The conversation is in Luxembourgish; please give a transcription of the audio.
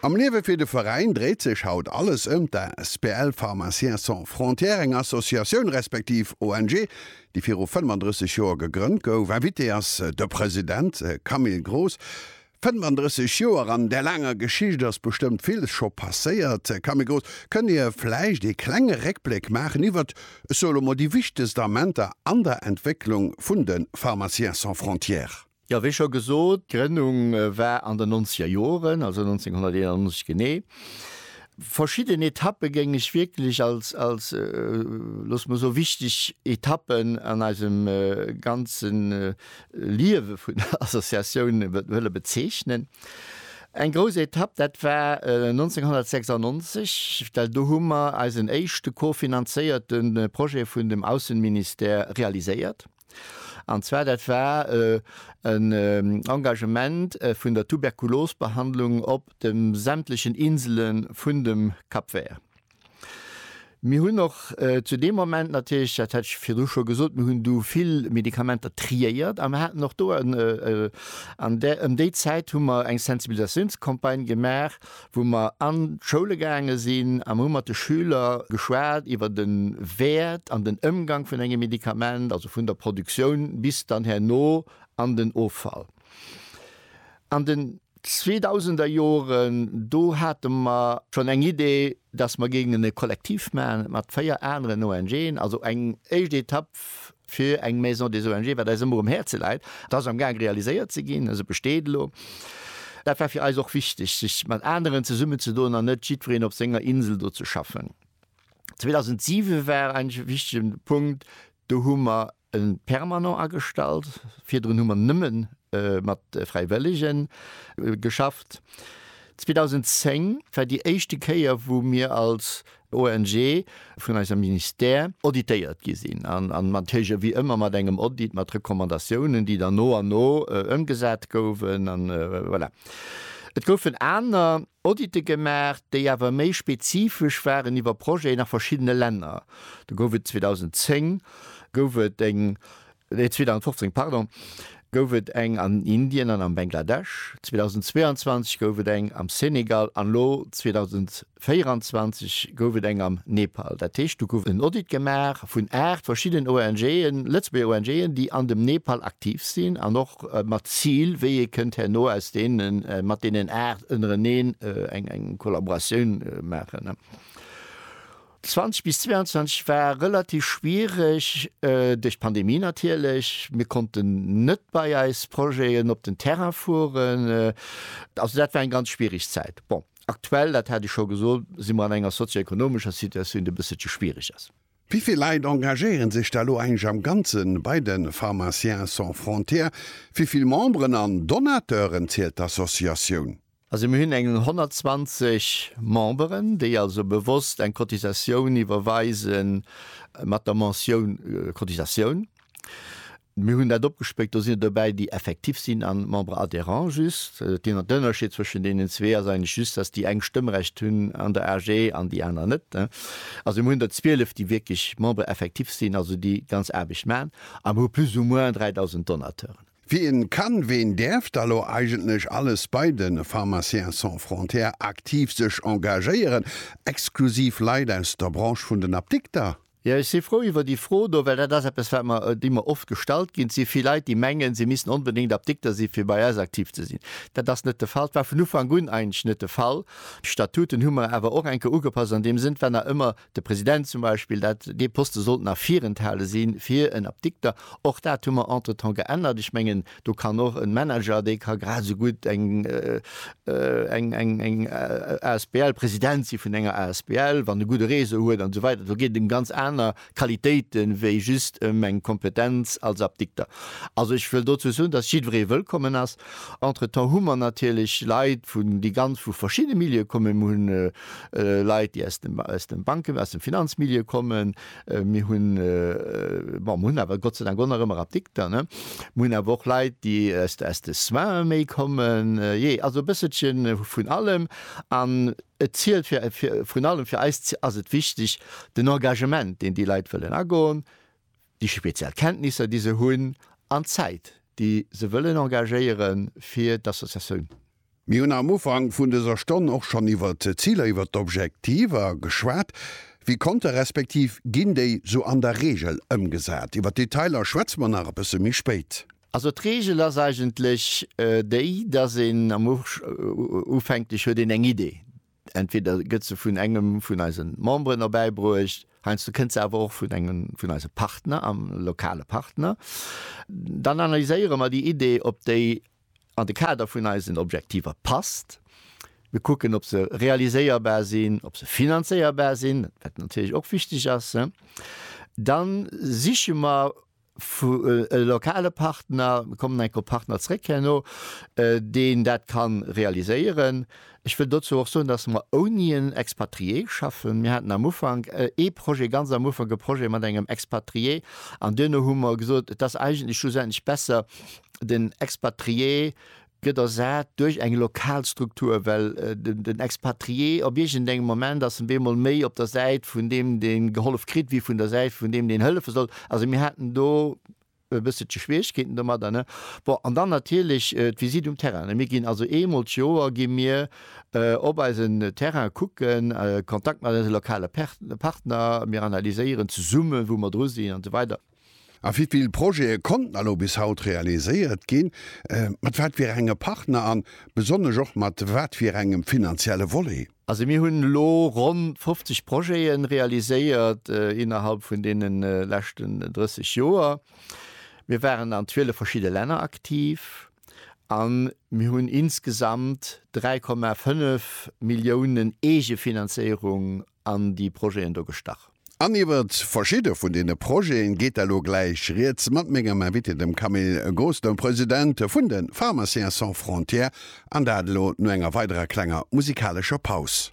Am Liewe fir de Veräin dréit sech haut alles ëm d'Asbl Pharmaciens sans frontières, eng Associatioun respektiv ONG, déi viru 35 Joer gegrënnt gouf. Invité ass de President Camille Groos. 35 Joer, an där laanger Geschicht ass bestëmmt villes scho passéiert. Camille Groos, kënnt Dir vläicht ee klenge Réckbléck maachen iwwert, ech soe lo mol, déi wichtegst Amenter an der Entwécklung vun de Pharmaciens sans frontières? Jo, wéi scho gesot, d'Grënnung war an den nonzeger Joren, also 1991 genee. Verschidden Etappe géing ech wierklech als, als, loosse mer soe wichteg Etappen an eisem ganze Liewe vun der Associatioun wëlle bezeechnen. Eng grouss Etapp, dat war 1996, well do hu mer eisen éischte co-finanzéierte Projet vun dem Ausseministère realiséiert. An zwar dat war en Engagement vun der Tuberkulosbehandlung op de sämtlechen Insele vun dem Cap Vert. Mir hunn och zu deem Moment natierlech, dat hat ech virdru scho gesot, mir hunn do vill Medikamenter triéiert a mir haten och do an där, ëm déi Zäit hu mer eng Sensibilisatiounscampagne gemaach, wou mer an d'Schoule gaange sinn a mer hu mat de Schüler geschwat iwwer de Wäert an den Ëmgang vun engem Medikament, also vun der Produktioun bis dann herno an den Offall. An den zweedausender Joren, do hate mer schonn eng Idee, dass mer géingen e Kollektiv maachen mat véier aneren ONGen, also eng éischt Etapp fir eng Maison des ONGe, wat eis ëmmer um Häerze läit. Dat ass am Gaang realiséiert ze ginn, se besteet elo. Dat war fir eis och wichteg, sech mat aneren zesummenzedoen an net jiddwereen op senger Insel do ze schaffen. 2007 war en wichtege Punkt, do hu mer e Permanent agestallt. Virdrun hu mer nëmme mat Fräiwëllege geschafft. 2010 war déi éischte Kéier, wou mir als ONG vun eisem Ministère auditéiert gi sinn an natierlech ewéi ëmmer mat engem Audit, mat Recommandatiounen, déi dann no an no ëmgesat goufen. An voilà, et goufen aner Audite gemaach, déi awer méi spezifesch waren iwwer Projeten a verschiddene Länner. Do gouf et 2010 gouf et eng 2015, pardon, gouf et eng an Indien an am Bengladesch, 2022 gouf et eng am Senegal an elo 2024 gouf et eng am Nepal. Dat heescht, do gouf en Audit gemaach vun aacht verschidden ONGen, Lëtzebuerger ONGen, déi an dem Nepal aktiv sinn an och mat Zil, wéi ee kënnt herno aus deene mat deenen aacht ënnereneen eng Kollaboratioun maachen. 20 bis 22 war relativ schwiereg, duerch d'Pandemie natierlech. Mir konnten net bei eis Projeten op den Terrain fueren. Also dat war eng ganz schwiereg Zäit. Bon, aktuell, dat hat ech scho gesot, si mer an enger sozio-ekonomescher Situatioun, déi e bësselche schwiereg ass. Wéi vill Leit engagéiere sech da elo eigentlech am Ganze bei de Pharmaciens sans frontières? Wéi vill Memberen an Donateuren zielt d'Associatioun? Also mir hunn eng 120 Memberen, déi also bewosst eng Cotisatioun iwwerweise mat der Mentioun Cotisatioun. Mir hunn dat opgespléckt, do sinn et dobäi, déi effektif sinn a Membres adhérents just. Den Ënnerscheed zwëschen deenen zwee ass eigentlech just, dass déi eng Stëmmrecht hunn an der AG an déi aner net. Also mir hunn der 12, déi wierklech Membres effectifs sinn, also déi ganz Aarbecht maachen, a mir hu plus ou moins 3.000 Donateuren. Wien kann, ween däerf da lo eigentlech alles bei de Pharmaciens sans frontières aktiv sech engagéieren? Exklusiv Leit aus der Branche vun den Apdikter? Jo, ech si frou iwwer déi Fro do, well dat ass eppes, wat mer, déi mer oft gestallt ginn. Et si vill Leit, déi mengen, si missten onbedéngt Apdikter sinn, fir bei eis aktiv ze sinn. Dat ass net de Fall, war vun Ufank un eigentlech net de Fall. D'Statuten hu mer awer och enke ugepasst an deem Sënn, wann nach ëmmer De President zum Beispill, dat, dee Poste sollt nach virenthale si fir en Apdikter. Och dat hu mer entretemps geännert. Ech mengen, do kann och e Manager, dee ka grad esou gutt eng, eng, eng, eng asbl, President si vun enger asbl, wann e gudde Réseau huet an esou weider. Do geet et ëm ganz aner Qualitéite wéi just ëm eng Kompetenz als Apdikter. Also ech wëll dozou soen, datt jiddweree wëllkommen ass. Entretemps hu mer natierlech Leit vun, déi ganz vu verschiddene Milieue kommen. Mir hunn Leit, déi aus dem, aus dem Banken-, aus dem Finanzmilieu kommen. Mir hunn, bon, mir hunn awer Gott sei Dank och nach ëmmer Apdikter, ne? Mir hunn awer och Leit, déi aus, aus de Soins méi kommen. Jee, also e bësselche vun allem. An et zielt fir, fir, vrun allem fir eis ass et wichteg, den Engagement, deen déi Leit wëllen agoen, déi speziell Kenntnisser, déi se hunn, an d'Zäit, déi se wëllen engagéiere fir d'Associatioun. Mir hunn am Ufank vun dëser Stonn och schonn iwwert d'Ziler, iwwert d'Objektiver geschwat. Wéi konnte respektiv ginn déi sou an der Reegel ëmgesat? Iwwert d'Detailer schwätze mer nach e bësse méi spéit. Also d'Reegel ass eigentlech déi, dass een am Ufänklech huet een eng Idee, Entweder gëtt se vun engem vun eise Memberen erbäibruecht, heiansdo kënnt se awer och vun engem vun eise Partner, am lokale Partner. Dann analyséiere mer déi Idee, ob déi an de Kader vun eisen Objektiver passt. Mir kucken, ob se realiséierbar sinn, ob se finanzéierbar sinn, wat natierlech och wichteg ass. Dann siche mer Vu lokale Partner kommen enk op Partner zréck herno, deen dat ka realiséieren. Ech wëll dozou och soen, datt mer ouni en Expatrié schaffen. Mir haten am Ufank ee Projet, ganz am Ufank e Projet mat engem Expatrié, an duerno hu mer gesot, et ass eigentlech schlussendlech besser, den Expatrié gëtt ersat duerch eng lokal Struktur, well den Expatrié op iergendengem Moment ass en bemol méi op der Säit vun deem dee gehollef kritt wéi vun der Säit vun deem deen hëllefe soll. Also mir haten do e bësselche Schwieregkeeten domadder. Bon, an dann natierlech d'Visitt um Terrain. Mir ginn also eemol d'Joer gi mir op eisen Terrain kucken, Kontakt mat eise lokale Partner, mir analyséieren zesumme wou mer dru sinn an esou weider. A wéi vill Projete konnten elo bis haut realiséiert ginn? Mat wat fir enge Partner an besonnesch och mat wat fir engem finanzielle Volet? Also mir hunn elo ronn 50 Projete realiséiert innerhalb vun deene leschten 30 Joer. Mir waren an 12 verschidde Länner aktiv a mir hunn insgesamt 3,5 Milliounen Eegefinanzéierung an déi Projeten do gestach. An iwwert verschidde vun deene Projeten geet elo gläich Rieds mat mengem Invité, dem Camille Gosdin, President vun de Pharmaciens sans frontières, an dat elo no enger weiderer klenger musikalescher Paus.